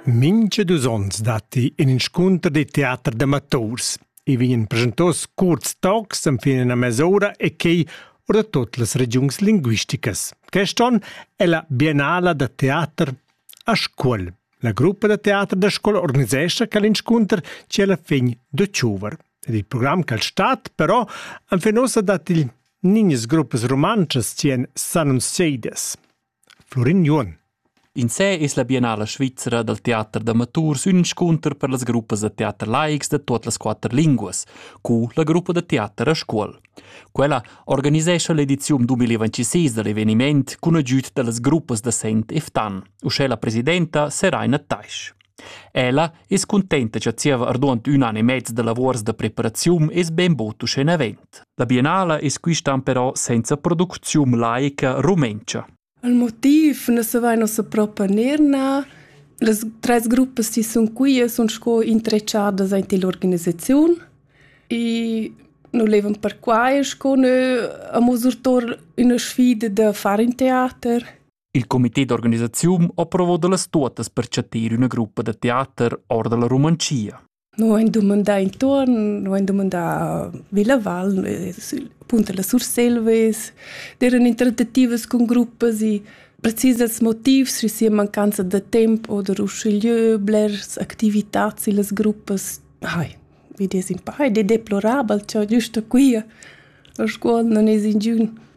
Mincha dus ons datti ün inscunter da teater d'amaturs. I vegnan presentos cuorts tocs enfin üna mes'ura e quai our da tuot las regiuns linguisticas. Quest on è la Biennala da teater a Scuol. La gruppa da teater da Scuol organisescha quel inscunter ci alla fin d'october. Ed il program cal stat, però, anfin ossa dat il niñas gruppas rumantschas ci en Sanum Seides. Flurin Juon. In sé es la Biennala svizra dal teater d'amaturs ün inscunter per las gruppas da teater laics da tuot las quatter linguas, cu la gruppa da teater a Scuol. Quella organisescha l'ediziun 2026 da l'eveniment cun agüd da las gruppas da Sent e Ftan, uschè la presidenta Seraina Taisch. Ella es cuntenta cha zieva arduond ün an e mez da lavuors da preparaziun es bainbod uschè navent. La biennala es quistan però senza producziun laica rumentscha. Il motiv nu se vaina ussa propa neir nà. Las tres gruppas chi sun qui sun sco intrechadas aint ill'organisaziun e nu levan perquai sco nö amo surtour üna sfida da far ün teater. Il comité d'organisaziun ha provo da las tuottas per chatter üna gruppa da teater or da la Romancia. Noi han dumandà intorno, noi han dumandà Villa Val, appunto la Surselves, erano intertatives con gruppas e precisas motivs, se sia mancanza de tempo oder usciglieu, blers activitats e las gruppas, ai, vi des in pai, de deplorabel, ciò giusto qui, la scuola non es in giun.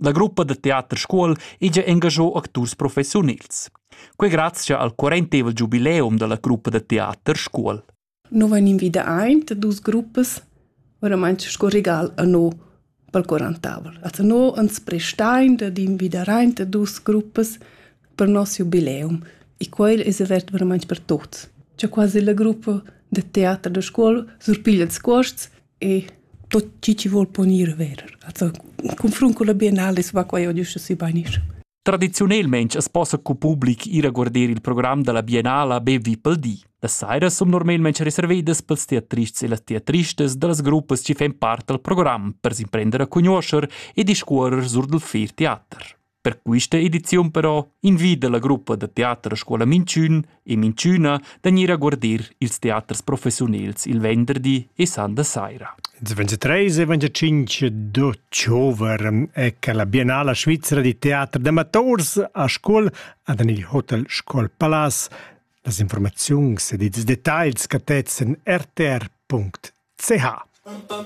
La gruppa da teater Scuol ija engagiò acturs professiunils. Quei grazia al quarentevel giubileum dalla gruppa da teater Scuol. Noi van invida aint dus gruppas, oramai sco regal a noi pel quarantavel. Also noi ans prestain da invidar aint dus gruppas per nos jubileum e quel es avert veramente per tuts. C'è quasi la gruppa de teater da scuola surpiglia ils cuosts e tot chi chi vol ponir ver. Also, confrun cun la biennale es va quai adiüscha sü bainisch. Tradiziunelmaing as possa cu public ir a guarder il program da la Biennala be vi pel di. Las sairas sun normalmaing reservedas pels teatrists e las teatristas da las gruppas chi fan part dal program per s'imprender a cugnuoscher e discuorrer sur dal fer teater. Per questa ediziun però invida la gruppa da teater a scuola Minchün e Minchüna da gnir a guardir ils teaters professiunels il venderdi e sanda saira. Il 23 e 25 d'october è che la Biennala Svizzera di Teatro d'Amators a Scuol ad il Hotel Scuol Palace las informazioni ed i details cattezen rtr.ch.